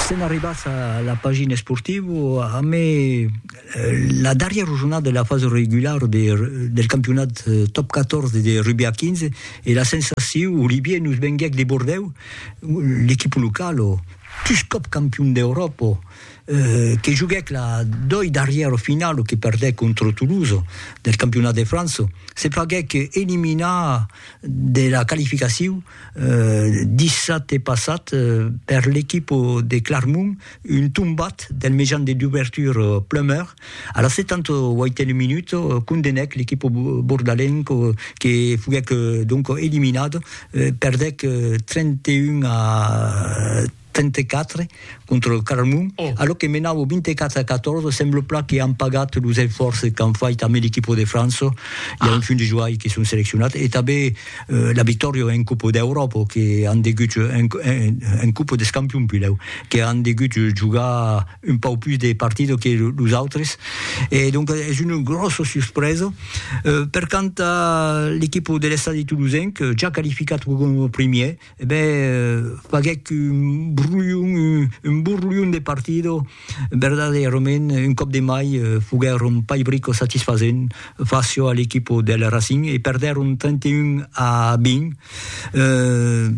Sèm arribats a la pagina esportiva amb la darrièra jornada de la fasa regulara del campionat Top 14 de rugbi a 15 e la sensacion, Olivier, nos venguèc de Bordèu, l'equipa locala, pus còp campion d'Euròpa, que joguèc la doi darrièra finala que perdèc contra Toulouse del campionat de França, se faguèc eliminar de la qualificacion. dissabte passat per l'equipa de Clarmont, un tombat del mejan de dubertura Plummer a la 78a minuta condenèc l'equipa bordalenca que foguèc donc eliminada, perdèc 31 a 34 contra lo Carmon, a lo que menau au 24 a 14, sembla plan que an pagat los esfòrces qu'an fait amé l'equipo de França, i a un fum de joai que son seleccionats, e tanbé la victòria en copa d'Euròpa que an degut, en copa des campions pilhèu, que an degut jogar un pauc pus de partidas que los autres, e donc es una gròssa suspresa. Per quant a l'equipo de l'Estadi Toulousain, que ja qualificat coma primièr, e ben faguèc un brolhon, un borlhon de partida, verdaderament un còp de mai foguèron pas brico satisfasent fàcia a l'equipa del Racing e perdèron 31 a 20, eh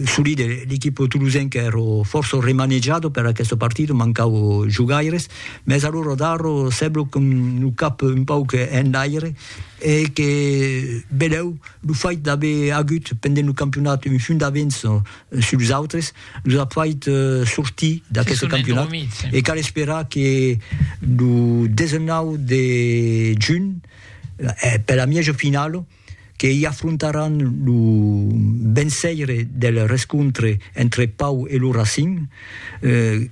solide l'equipa tolosenca èra fòrça remanejada per aquesta partida, mancava jogaires, mès alora Darro sembla qu'an lo cap un pauc enlaire, E que benlèu lo fait d'aver agut pendent lo campionat un punt d'avença sus los autres los a fait sortir d'aqueste campionat e cal esperar que lo 19 de junh per la mièja finala que i afrontaràn lo venceire del rescontre entre Pau e lo Racing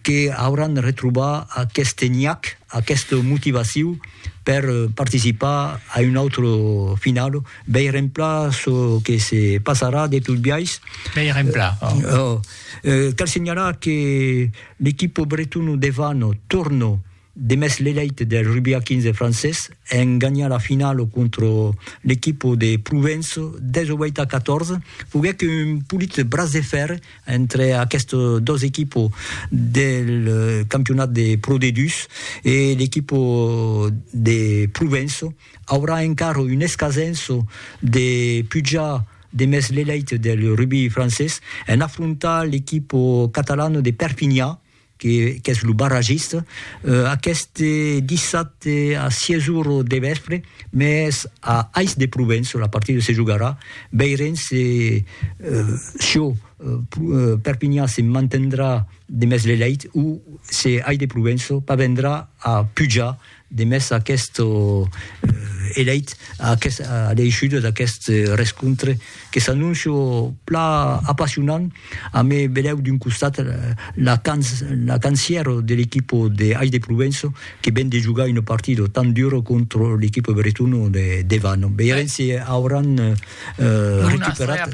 que auràn retrobar aqueste nhac, aquesta motivaciu. per participar a un autre final. Veirem pla çò que se passarà de tot biais. Veirem pla. Oh. Eh, cal senhalar que l'equipo bretona de Vano torna de mès l'elèit del rugbi a 15 francés en ganhar la finala contra l'equipo de Provença 18 a 14. Foguèc un polit bras de fèrre entre aquestes dos equipos del campionat de Pro D2 e l'equipo de Provenço, aurà encara un escasenço de pujar demest l'elèit del rugbi francés en afrontar l'equipo catalan de Perpinha, que qu'es lo barragista, aqueste dissabte a 6 ora de vèspre, mès a Ais de Provença la partida se jogarà, veirem se çò Perpinhan se mantendrà demest l'elèit o se Ais de Provença parvendrà a pujar Demest aqueste eleit a l'eishuda d'aquest rescontre que s'anóncia pla apassionant a me velèu d'un costat la cancièra de l'equipa de Ais de Provença que ven de jogar una partida tan dura contra l'equipa bretona de Devano. Veirem si auràn recuperat.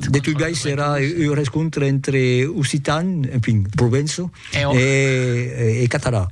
De tot biais serà un rescontre entre occitans, enfin, Provença. e catalan.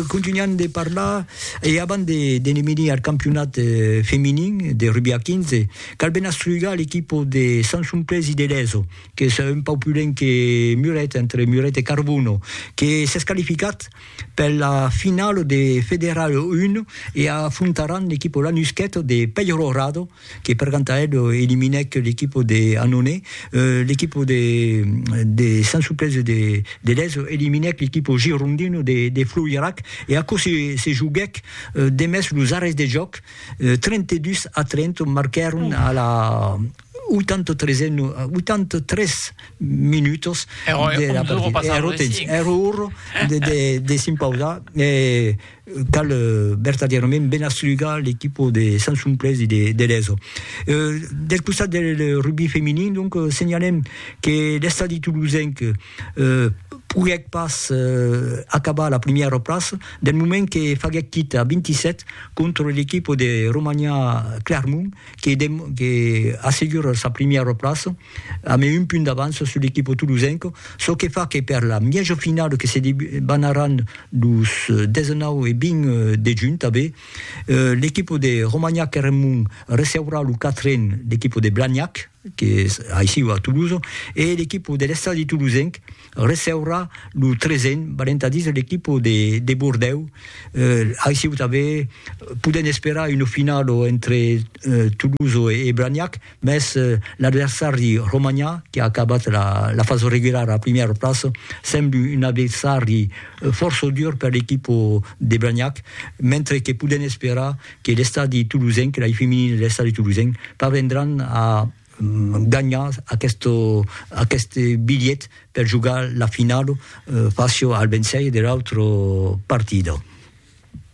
Contunhan de parlar e abans de ne venir al campionat feminin de rugbi a 15, cal ben astrugar l'equipa de Sant Somplés i de Leso, qu'es un pauc plus lent que Muret, entre Muret e Carbono, que s'es qualificat per la finala de Federal 1 e afrontaràn l'equipa Lanusqueta de Peyrorado, que per Cantaed eliminèc l'equipo de Annonay, l'equipo de de Sant Suplèci de de Lèso eliminèc l'equipo girondino de de Floirac e aquò se se joguèc demest los arrèsts de jòc, 32 a 30 marquèron a la 83 e 83 minutos de la partida, èra temps, èra ora de de de s'impausar e Cal vertadièrament ben aslugar l'equipo de Sansumplés e de Lezo. Del costat del rugbi feminin, donc, senhalem que l'Estadi Toulousenc poguèc pas acabar a la primièra plaça, del moment que faguèc quita a 27 contra l'equipo de Romania Clermont que assegura sa primièra plaça. Amé un punt d'avança sul equipo tolosenc, çò que fa que per la mièjo finala que se debanaràn los 19 e 20 de junh tanbé, l'equipo de Romagnac-Eremont receurà lo quatren l'equipo de Blagnac, que es aicí a Tolosa, e l'equipo de l'Estadi tolosenc receurà lo tresen balentadís de l'equipo de, de Bordèu. Eh, aicí tanben podem esperar una finala entre eh, Toulouse e, e Blagnac, mès eh, l'adversari romanhà, que ha acabat la, la fasa regulara a primièra plaça, sembla un adversari eh, fòrça dur per l'equipo de Blagnac, mentre que podem esperar que l'estadi toulousen, que l'ai feminin de l'estadi toulousen, parvendràn a ganhar aqueste bilhet per jogar la finala fàcia al vencèir de l'autra partida.